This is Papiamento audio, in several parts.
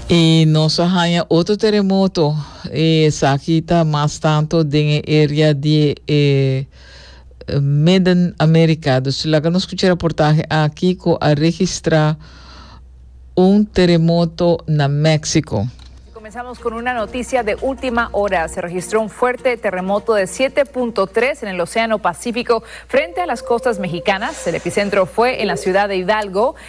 I nos a haña otro teremoto. Esaki ta mas tanto den e area di e Midden America. Dus laga nos scucha e raportahe aki cu a registra un teremoto na Mexico. Comenzamos con una noticia de ultima hora. Se registró un fuerte terremoto de siete punto tres en el Océano Pacífico, frente a las costas mexicanas. El epicentro fue en la ciudad de Hidalgo,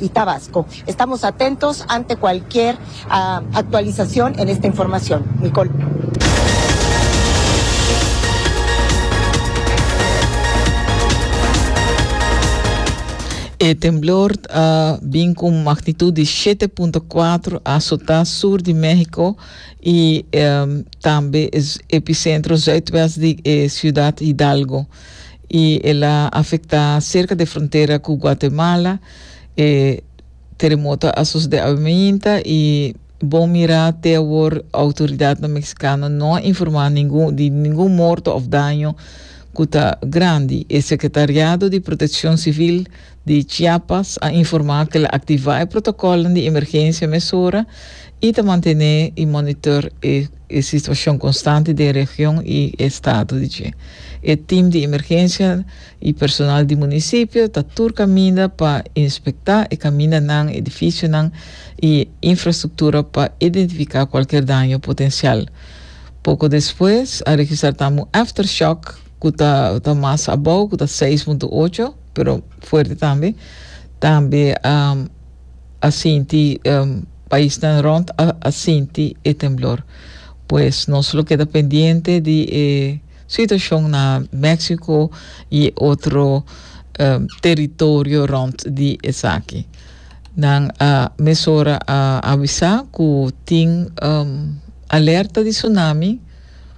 y Tabasco. Estamos atentos ante cualquier actualizacion en esta informacion. Nicole. E temblor a bin cu un magnitud di siete punto cuatro a azotá sur di México y um, tambe es epicentro zuidwest di e ciudad Hidalgo. y el a afecta cerca de frontera cu Guatemala, e teremoto a sucede awe mainta y bon mira te awor autoridadnan Mexicano no a informa ningun di ningun morto of daño cu ta grandi. E Secretariado di Proteccion Civil di Chiapas a informa cu el a activa e protocolnan di emergencia mesora y ta mantene y monitor e e situacion constante den region y e estado di dje. E team di emergencia y personal di municipio ta tur caminda pa inspecta e camindanan, edificionan y infrastructura pa identifica cualkier daño potencial. Poco despues a registra tambe un aftershock cu ta ta mas abou, cu ta seis punto ocho, pero fuerte tambe. Tambe a. a sinti um, paisnan rond a, a sinti e temblor. Pues nos lo keda pendiente di e situacion na Mexico y otro um, territorio rond di esaki. Nan a mesora a avisa cu tin um, alerta di tsunami,